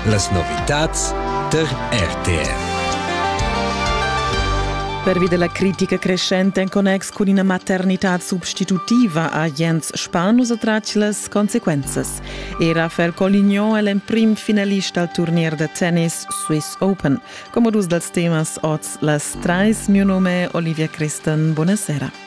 Las novitads per RTR. Pervi della critica crescente in connex cun ina maternitad substitutiva ha Jens Spanus attratg las consequenzas. Era Fer Colignon è l'emprim finalista al turnier da tennis Swiss Open. Come dus dels temas oz las trais, mio nome è Olivia Christen. Buonasera.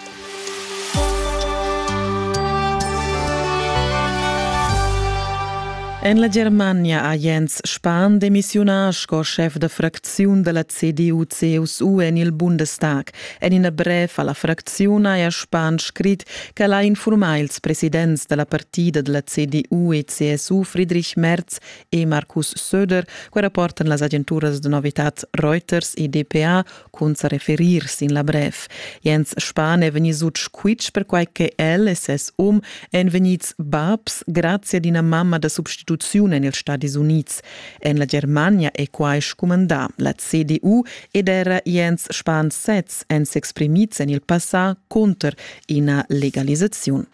En la Germania ha Jens Spahn demissiunà sco schef da fracziun da la CDU-CSU en il Bundestag. En ina brev a la fracziun haja Spahn scrit ch'el ha infurmà ils presidents da la partida da la CDU e CSU Friedrich Merz e Markus Söder, che rapportan las agenturas da novitad Reuters e DPA, cun sa referir sin la brev. Jens Spahn è vegnì sut squitsch perquai che el e ses um èn vegnids babs grazie ad ina mamma da substituziun en ils Stadis Unids. En la Germania è quai scumandà. La CDU ed era Jens Spahn sez èn s'exprimids en il passà cunter ina legalisaziun.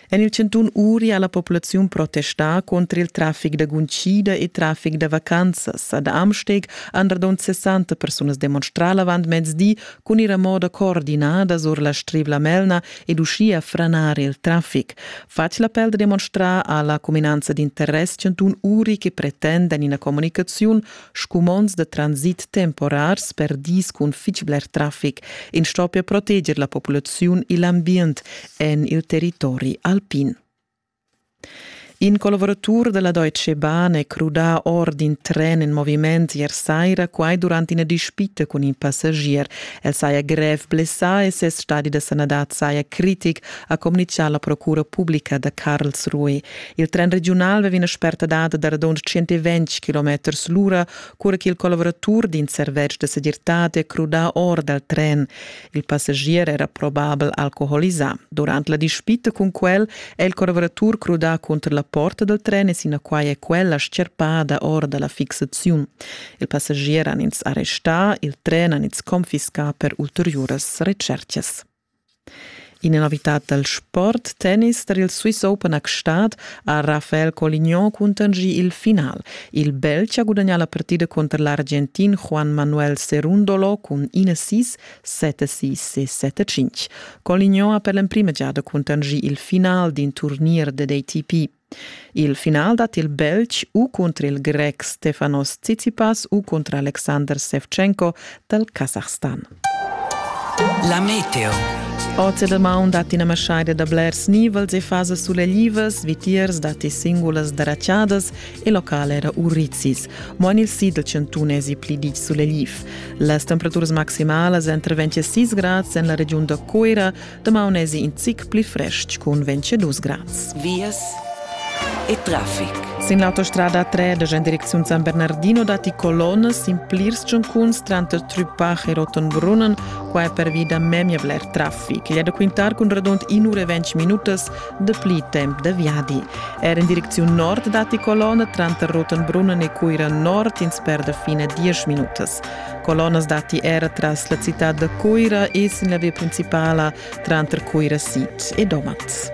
En il chantun Uri ha la populaziun protestà contr il traffic da guntgida e traffic da vacanzas. Ad Amsteg han radund 60 persunas demonstrà l'avantmezdi cun ir a moda coordinada sur la Strivla Melna ed uschia franar il traffic. Fatg l'appel da demonstrar ha la cuminanza d'interess chantun Uri che pretenda en ina communicaziun Scumonds da transit temporars per dis cun fitg bler traffic in stoppia proteger la populaziun e l'ambient en il territori alpin. In collaboratur della Deutsche Bahn è crudà or d'in tren in moviment ier saira, quai durant ina dispita cun in passagier. El saja grev blessà e ses stadi da sanadad saja critic, ha communitgà la procura publica da Karlsruhe. Il tren regiunal veva ina spertadad da radund 120 km l'ura, cura che il collaboratur d'in servetsch da segirtad è crudà or dal tren. Il passagier era probabel alcoholisà. Durant la dispita cun quel è il collaboratur crudà cunter la porta dal tren e sinaquai è quella scherpada or da la fixaziun. Il passagier han ins arrestà, il tren han ins confiscà per ulteriuras recercas. Ina novitad dal sport tennis tar il Swiss Open a Gstaad ha Rafael Colignon cuntanschì il final. Il Belg ha gudagnà la partida cunter l'Argentin Juan Manuel Cerundolo cun 1-6, 7-6 e 7-5. Colignon ha per l'emprima giada cuntanschì il final d'in turnier dad ATP. Il final dat il Belg u cunter il Grec Stefanos Tsitsipas u cunter Alexander Sevchenko dal Kasachstan. La meteo. Oz da maun dat ina maschaida da blers nivels e fasas suleglivas, vitiers datti singulas daraciadas e local era urizis. Mo en il sid del chantunesi pli ditg sulegliv. Las temperaturas maximalas entre 26 grads en la regiun da Coira, Damaun esi in zic pli frestg cun 22 grads. Vias e traffic. Sin l'autostrada 3 da en direcziun San Bernardino datti colonnes in plirs giuncuns tranter Trupach e Rotenbrunnen. Qua è pervi da memia bler traffic. Gli è da quintar cun radund in ura e ventg minutas de pli temp da viadi. Er in direcziun nord datti colonne tranter Rotenbrunnen e Cuira nord ins per da fine 10 minutas. Colonas datti era tras la citad da Cuira e sin la via principala tranter Cuira Sic e Domat.